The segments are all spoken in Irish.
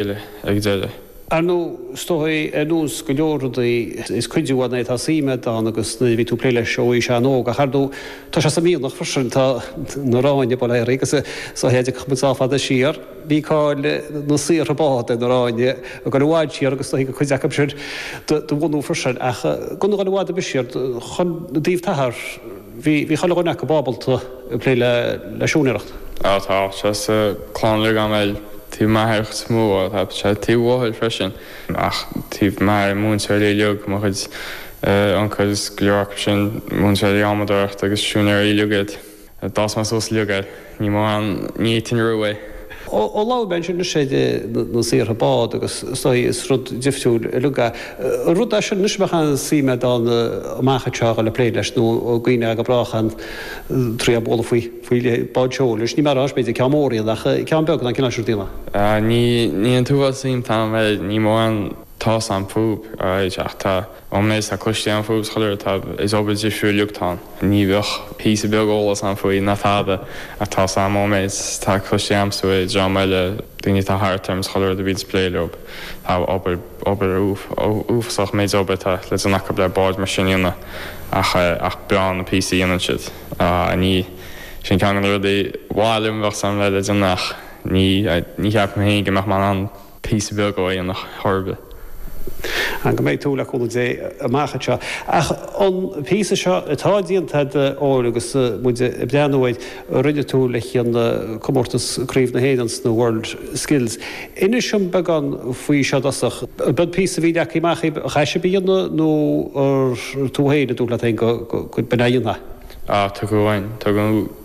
chéile ag deireadh. Ar nó, 's dóigh é, ar nós go leor rudaí, is cuidiú é má tá suim a'd ann agus nuair a bhí tú ag plé leis ó aois an-óg ach ar nó tá sé sa mhianach freisin, tá na Ráinne ba léir agus sa chéad deich mbliana fada siar bhí cáil na saortha bád ar na Ráinne ag dul i bhfad siar agus is dóigh cuid acu sin de do bhunadh freisin ach gan dul i bhfad ar bith siar, chun i dtaobh t'athar. Bhí chuile dhuine acu ábalta plé le siúinéireacht. Á tá sé sa clann uilig, bhuel. Taobh m'athair is mó atá sé, taobh mo mháthair freisin, ach taobh m'athar múinteoirí uilig mo chuid uncail is go leor acu sin, múinteoirí adhmadóireachta agus siúinéirí uilig iad. D'fhás mé suas uilig air. Ní mór an t-ionadh é. Ó labhair mé ansin, is é na saortha bád agus, is dóigh, is rud difriúil uilig é. An rud é sin anois a mbeadh aon suim a'd ann amach anseo a dhul ag plé leis nó an gcaoi mbeadh go brách an draoi a bualadh faoi bád seoil. Anois, níl mé ag rá, b'fhéidir ceann mór uilig ach ceann beag, an cineál sin daoine. Ní, níonn tú bhfuil suim, tá mé, ní mórán atá a fhios a'm fúb, all right, ach tá. Ón méid atá cloiste a'm faoi scoileadh Taabu, is obair dhifriúil uilig atá ann. Ní bheadh píosa beag eolas a'm faoi ná tada tá a fhios a'm ón méid atá cloiste agamsa faoi dream eile daoine atá thart orm, scoileadh do bhí ag plé leob. Taabu obair, obair uafásach méid obair atá le déanamh acu le báid mar sin a dhéanamh ach, ach is breá na píosaí a dhéanann siad. Á, ní, sin ceann de na rudaí, mhaith liom bheadh san le déanamh ach ní, ní cheapaim féin go mbeadh mé in ann. píosa beag ó aon chor ar bith. Á beidh tú, le cúnamh Dé, amach anseo ach an píosa seo atá déanta a'd Eoin agus muid ag breathnú air, rinne tú le haghaidh an comórtas Craobh na hÉireann sna World Skills. Inis dom beagán faoi seo i dtosach. Ab in píosa a bhí leagtha amach a chaith sibh a dhéanamh nó ar tú féin a dúirt leat féin go b'in a dhéanfá? Á, tugadh dhúinn, tugadh.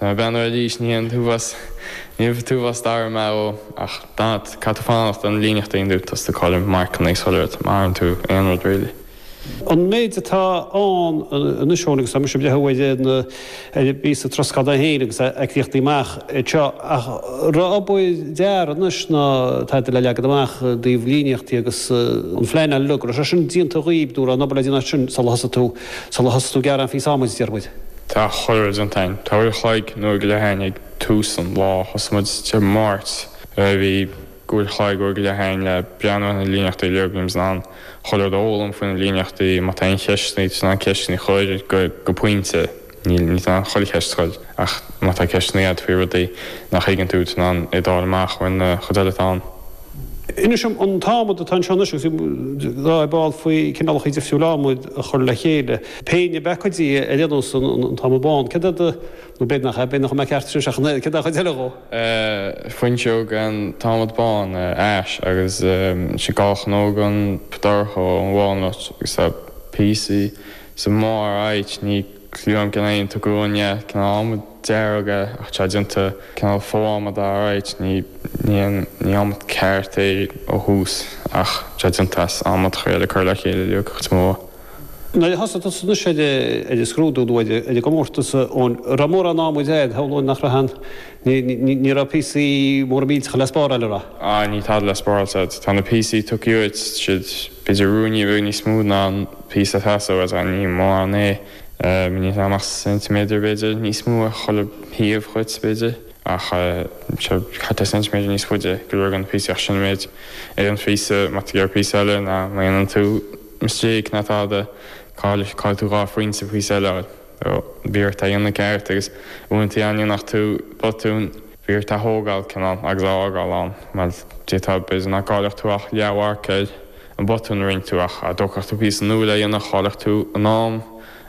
Tá mé beann ar a dís, níl an t-uafás, níl an t-uafás dar a mbeadh, ach dad, caithfidh tú fanacht ar an líníocht aoin dúit tosú ag cailleadh marcanna scoil ort, má athraíonn tú aon rud really. An méid atá ann anois Eoin agus tá mise ag breathnú ar an bpíosa troscán é féin agus é críochnaithe amach anseo, ach raibh aon dearadh anois ná tada le leagan amach daoibh líníochtaí agus an phleanáil uilig, raibh sé sin díonta dhaoib, nó an raibh aon obair le déanamh as sin sula thosaigh tú. Sula thosaigh tú ag gearradh píosa adhmaid, déarfaidh muid. Tá chuile rud díonta ann. Tá uair a chloig nó uair go leith a'inn ag tús an lae. Thosaigh muid Dé Máirt. Bhí uair a chloig, uair go leith a'inn le breathnú ar na líníochtaí uilig. Bhí muid in ann chuile rud a fhoghlaim faoi na líníochtaí. Má tá aon cheisteanna, tá tú in ann ceisteanna a chur go pointe. Níl níos mó ná chuile cheist scoile, ach má tá ceisteanna agat faoi rudaí nach dtuigeann tú, tá tú in ann é a fháil amach uaidh an chuid eile atá ann. Inis dom an t-adhmad atá anseo anois agus iad dhá ag gabháil faoi cineálachaí difriúla adhmaid a chur le chéile. Péine ab ea cuid de a déanamh sin an t-adhmad bán. Céard é do, nó beith nach ea, beith nach ea, mé ceart anois, ach an, céard é an chuid eile dhó? Fuinseog an t-adhmad bán, ash, agus sin gallchnó an píosa dorcha, an walnut, agus tá píosaí. Sa Mhár aici ní luaim go n-éigin tá ruainne cineál adhmad dearga ach tá sé déanta cineál fo-adhmad ar áit ní ní ní adhmad ceart é ó thús ach tá sé déanta as adhmad chaol ag cur le chéile liug agus móa. Nuair a thosaigh tusa anois ar an scrúdú nó ar an gcomórtas ó an raibh mórán adhmaid agat shamhlóinn nach raibh aon Ní raibh píosaí móra millteacha le spáráil an raibh. Ámh, ní raibh tada le spáráil agat. Tá na píosaí a tiocfaidh uait, sid b'fhéidir ruainne beag níos mó ná an píosa a theastódh uait, ach ní mórán é. Níl ann ach ceintiméadar, b'fhéidir, níos mó ar chuile thaobh dhuit, b'fhéidir, ach seo caite é ceintiméadar níos faide, go leor de na píosaí ach sin an méid. Ag an phíosa, má tá tú ag iarraidh píosa eile ná má dhéanann tú mistake ná tada, cailleann tú dhá phointe sa phíosa eile? Ó, b'fhearr dhuit é a dhéanamh ceart, agus uaireanta dá ndéanfadh tú botún, b'fhearr dhuit é a thógáil cineál, agus a fhágáil ann, mar d'fhéadfadh, b'fhéidir, nach gcaillfeadh tú ach leathmharc ar an botún a rinne tú, ach dá dtógfadh tú píosa nua le dhéanamh, chaillfeadh tú an am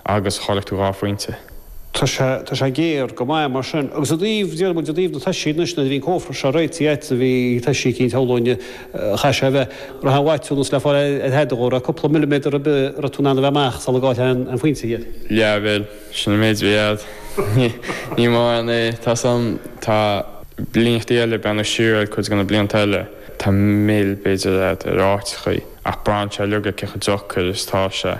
agus chaillfeadh tú dhá phointe. Tá sé, tá sé géar go maith mar sin. Agus i dtaobh, déarfaidh muid, i dtaobh na toisí anois, nuair a bhí an cófra seo réitithe agat, bhí toisí eicínt, shamhlóinn, Chaithfeadh sé a bheith, an raibh aon mhaithiúnas le fáil ar thada dhó, an raibh cúpla miliméadar ar bith, go raibh tú in ann a bheith amach sula gcaillfeá an phointe iad. Leathmhil, sin an méid a bhí agat. Ní mórán é. Tá san, tá líníochtaí eile, breathnú siar ar chuid de na blianta eile, tá mil, b'fhéidir, agat ar áiteachaí, ach braitheann sé uilig ar cé chomh deacair is atá sé.